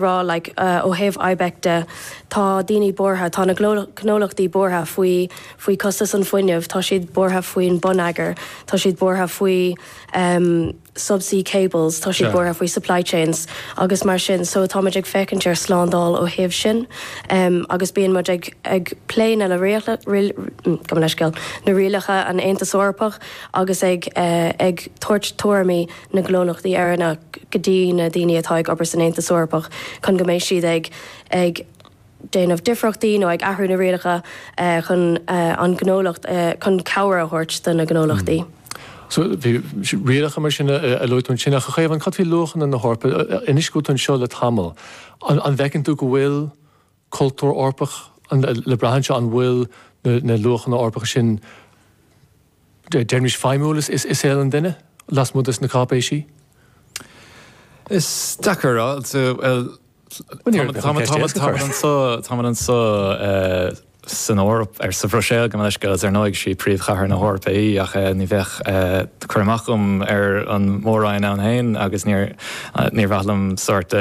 rá like ó thaobh IBEC de, tá daoine buartha, tá na gnólachtaí buartha faoi faoi costas an fuinneamh, tá siad buartha faoin bonneagar, tá siad buartha faoi em subsea cables, tá siad buartha faoi supply chains agus mar sin so táimid ag féachaint ar slándáil ó thaobh sin em agus bíonn muid ag ag plé na le rialacha riail gabh mo leithscéal leis na rialacha an Aontas Eorpach agus ag eh ag tabhairt tuairimí na gnólachtaí Éireannach go dtí na daoine atá ag obair san Aontas Eorpach chun go mbeidh siad ag déanamh difríochtaí nó ag athrú na rialacha chun an gnólacht, chun cabhair a thabhairt do na gnólachtaí. So, sin rialacha mar sin a luaigh tú ansin ach a Chaomháin, cad faoi luachanna na hEorpa? Anois go bhfuil tú anseo le tamall, an bhfeiceann tú go bhfuil, cultúr Eorpach le brath anseo, an bhfuil na luachanna Eorpacha sin, deirimís, feidhmiúil i saol an duine lasmuigh de na cáipéisí? Is dócha táimid anseo san Eoraip, nó sa Bhruiséil gabh mo leithscéal, agus ar ndóigh is í príomhchathair na hEorpa í, ach ní bheadh cur amach agam ar an Mór-Roinn ann féin agus níor mhaith liom sórt,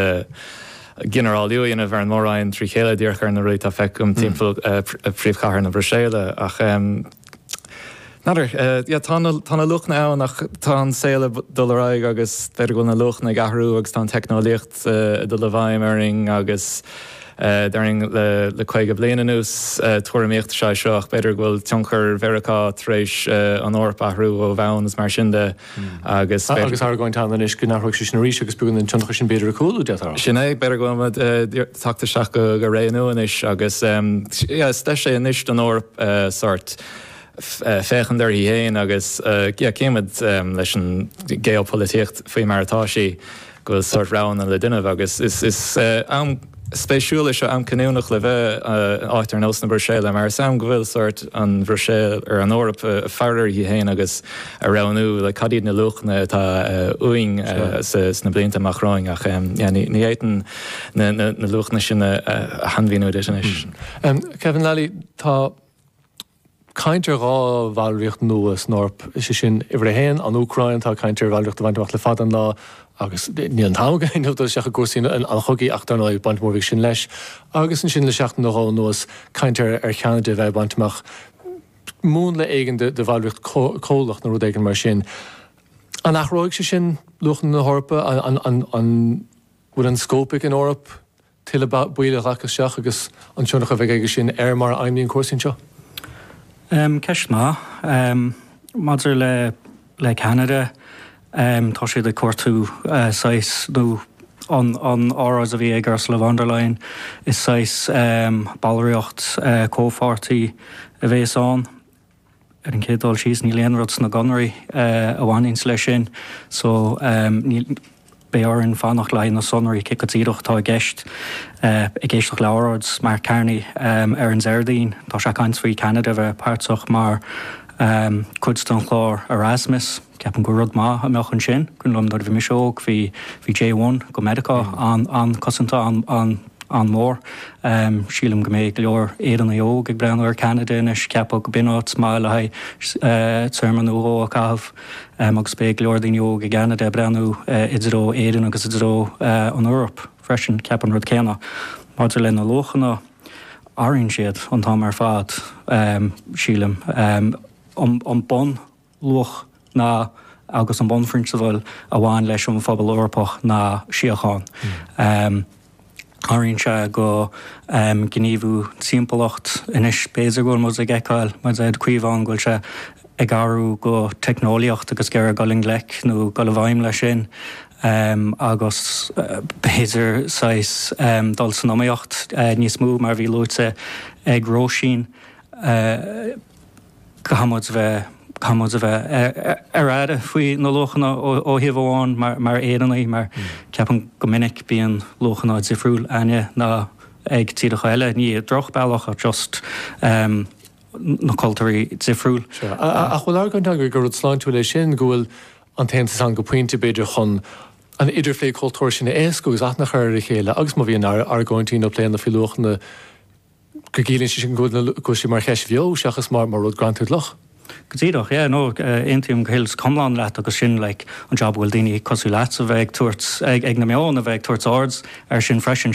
ginearálú a dhéanamh ar an mór-roinn trí chéile díreach ar na rudaí a fheicim timpeall príomhchathair na Bruiséile ach n'fheadar, yeah tá na tá na luachanna ann ach tá an saol ag dul ar aghaidh agus b'fhéidir go bhfuil na luachanna ag athrú agus tá an teicneolaíocht ag dul i bhfeidhm orainn agus déarfainn le le caoga bliain anuas tuairimíocht is ea seo ach b'fhéidir go bhfuil tionchar Mheiriceá tar éis an Eoraip a athrú ó bhonn is mar sin de. agus. Agus tá argóint ann anois go n-athróidh sé sin arís agus beagán den tionchar sin b'fhéidir ag cúlú, dar ndóigh. Sin é, b'fhéidir go mbeidh teacht isteach go réasúnta anois agus yeah is deis é anois don Eoraip sort féachaint uirthi féin agus yeah címid leis an gheopholaitíocht faoi mar atá sí. go bhfuil sórt roghanna le déanamh agus is am spéisiúil é seo, am cinniúnach le bheith in áit ar nós na Bruiséile mar is am go bhfuil sórt an Bhruiséil nó an Eoraip ag faire uirthi féin agus ag roghnú cad iad na luachanna atá uainn sna blianta amach romhainn ach ní fhéadfainn na luachanna sin a shainmhíniú duit anois. Kevin Lally, tá. caint ar dhá bhallraíocht nua san Eoraip, is é sin uimhir a haon, an Úcráin, atá caint ar bhallraíocht a bhaint amach le fada an lá agus níl an t-am againn dul isteach i gcúrsaí an chogaidh ach dar ndóigh baint mhór a bhí sin leis, agus ansin le seachtain nó dhó anuas caint ar Cheanada a bheith ag baint amach múnla éigin de bhallraíocht chomhlach nó rud éigin mar sin. An athróidh sé sin luachanna na hEorpa? An bhfuil an scóip ag an Eoraip? tuilleadh baill a ghlacadh isteach agus an tionchar a bheidh aige sin ar mar a fheidhmíonn cúrsaí anseo. Ceist maith. Maidir le Ceanada, tá siad ag cuartú saghas, nó an óráid a bhí ag Ursula von der Leyen, is saghas ballraíocht comhpháirtí a bhéas ann. Ar an gcéad dul síos, níl aon rud sna gconarthaí a bhainfidh leis sin, so níl, beidh orainn fanacht le haghaidh na sonraí cé go díreach atá i gceist, ag éisteacht le óráid Mark Carney ar an Déardaoin. Tá sé ag caint faoi Cheanada a bheith páirteach mar chuid den chlár Erasmus. Ceapaim gur rud maith a bheadh ansin, cuimhin liom nuair a bhí mise óg, bhí, bhí J-1 go Meiriceá an, an-chosanta, an, an, an-mhór. Sílim go mbeidh go leor Éireannaigh óg ag breathnú ar Ceanada anois, ag ceapadh go b'in áit maith le haghaidh téarma nó dhó a chaitheamh agus beidh go leor daoine óg i gCeanada ag breathnú i dtreo Éireann agus i dtreo an Eoraip freisin, ag ceapadh an rud céanna. Maidir le na luachanna, athraíonn siad an t-am ar fad, sílim. An, an bun. luach ná agus an bunphrionsabal a bhain leis an phobal Eorpach ná síocháin. Athraíonn sé go gníomhú timpeallacht anois b'fhéidir go bhfuil muid ag fheiceáil mar a dúirt Caomhán go bhfuil sé ag athrú go teicneolaíocht agus go raibh ag dul i ngleic nó dul i bhfeidhm leis sin agus b'fhéidir saghas dul san iomaíocht níos mó mar a bhí luaite ag Róisín. Caithfimid bheith, caithfimid a bheith ar an airdeall faoi na luachanna ó thaobh amháin mar, mar Éireannaigh, mar ceapaim go minic bíonn luachanna difriúla againne ná ag tíreacha eile, ní i drochbhealach ach just na cultúir dhifriúla. Sure. Ach bhfuil argóint ann gur rud sláintiúil é sin, go bhfuil an tAontas ann go pointe b'fhéidir chun an idirphlé cultúir sin a éascú agus aithne a chur ar a chéile agus má bhíonn argóintí nó pléanna faoi luachanna go gciallaíonn sé sin go bhfuil sé mar cheist bheo seachas mar rud greanta i gcloch. Go díreach, yeah, no, aontaím go huile is go hiomlán leat agus sin, like, an job a bhfuil daoine cosúil leatsa bheith ag tabhairt, ag na meáin a bheith ag tabhairt aird ar sin freisin.